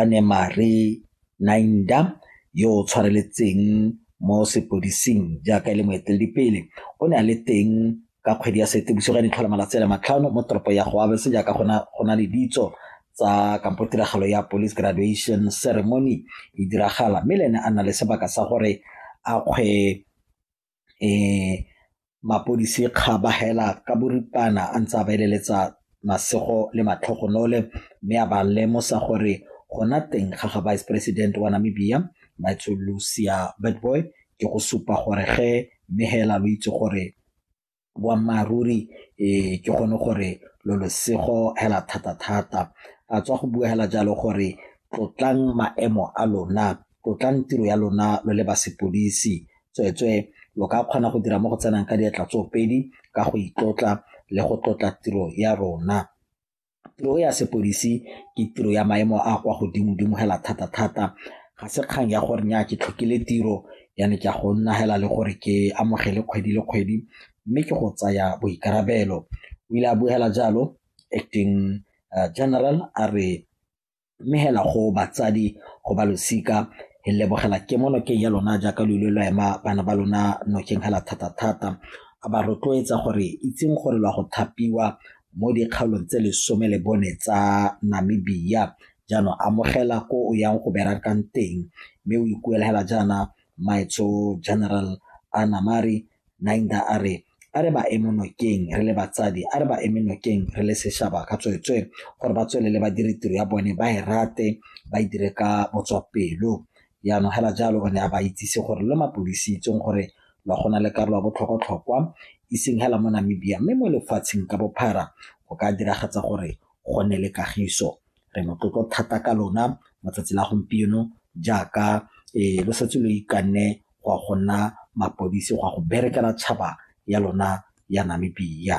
Anemarie Nainda yo o tshwareletseng mo sepodising jaaka e le moeteledipele o ne a le teng ka kgwedi ya Seetebosigo ya ditlhola malatsi a le matlhano mo toropo ya Goabese jaaka go na le ditso tsa kampo tiragalo ya police graduation ceremony e diragala mme le ene a nna le sebaka sa gore a kgwe mapodisi kga ba hela ka boripana a ntse a ba eleletsa masego le matlhogonolo mme a ba lemosa gore gona teng ga ga vice president wa Namibia Maitso Lucia Boy ke go supa gore ge mme hela lo itse gore boammaaruri um ke gone gore lo losego hela thata-thata a tswa go bua hela jalo gore tlotlang maemo a lona tlotlang tiro ya lona lo le ba sepodisi tsweetswee lo ka kgona go dira mo go tsenang ka diatla tsoopedi ka go itlotla le go tlotla tiro ya rona Tiro ya sepodisi ke tiro ya maemo a kwa godimo-dimo hela thata-thata, ga se kgang ya gore nyaa ke tlhokile tiro jaanong ke a go nna hela le gore ke amogele kgwedi le kgwedi mme ke go tsaya boikarabelo, o ile a bua hela jalo Acting General a re mmegela go batsadi go ba losika e lebogela ke mo nokeng ya lona jaaka lo ile lo ema bana ba lona nokeng hela thata-thata a ba rotloetsa gore itseng gore lwa go thapiwa mo dikgaolong tse lesome le bone tsa namibia jaanong amogela ko o yang go berakang teng mme o ikuela hela jaana maetso general anamari Naidha a re, A re ba eme nokeng re le batsadi, a re ba eme nokeng re le sešhaba ka tsweetswee gore ba tswelele ba dire tiro ya bone ba e rate ba e dire ka botswapelo. Jaanong hela jalo o ne a ba itsise gore lo mapodisi itseng gore lwa go na le karolo ya botlhokwatlhokwa iseng hela mo Namibia mme mo lefatsheng ka bophara go ka diragatsa gore go nne le kagiso. Re motlotlo thata ka lona mo tsatsi la gompieno jaaka lo setse lo ikanne go ya go nna mapodisi go ya go berekela tšhaba ya lona ya Namibia.